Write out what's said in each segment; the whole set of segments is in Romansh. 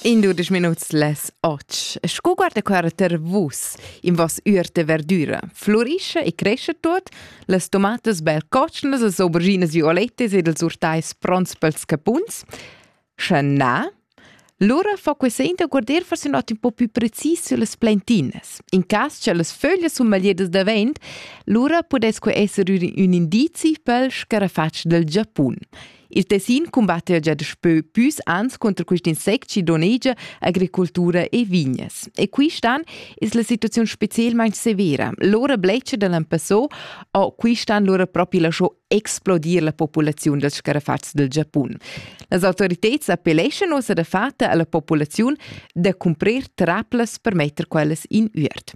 In dudisch minuts les och. Sco guarda quarter vus in vos ür de verdura, florisce e cresce tot, las tomatas bel cocnas, las auberginas violettes ed els urtais pronts pels capuns. Sche na, lura fa quest'enta guarder forse not un po più precis sulle plantinas. In cas che las föglie sun magliedas da vent, lura pudesque esser un indizi pel scarafatsch del Giapun. Il Tessin cumbatta gia daspö püs ans conter quist insect chi donegia agricultura e vignas. E qui stan es la situaziun specielmaing severa. Lora blecha da l'Ampasso o qui stan lora propi lascho explodir la populaziun dals scarafats del Giapun. Las autoriteds appelleschan ussa da fatta alla populaziun da cumprir traplas per metter quellas in üert.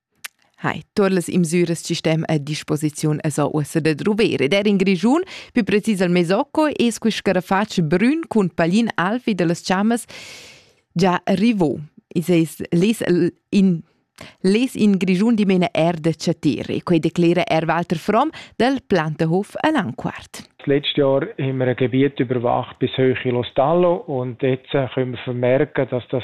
Hai, tuot las imsüras chi stem a disposiziun esa uossa da druver ed eir in Grischun, pü precis al Mesocco, es quist scarafatsch brün cun paglin alv vi da las chammas già rivò. I's es less in less in Grischun dimena eir da chattere. Quei declera er Walter Fromm dal Plantehof a Langquart. Letztes Jahr haben wir ein Gebiet überwacht bis hoch in Los Tallo und jetzt können wir vermerken, dass das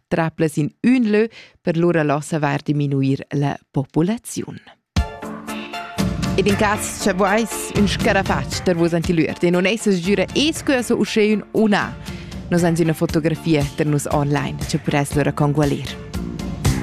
traplas in ün lö per lura lo savair diminuir la populaziun. Ed in cas cha vois ün scarafacc per vos antilüert e non esa sgüra esqueso uschè ün o na. Nos ans üna fotografia per nus online, cha pres lura congualir.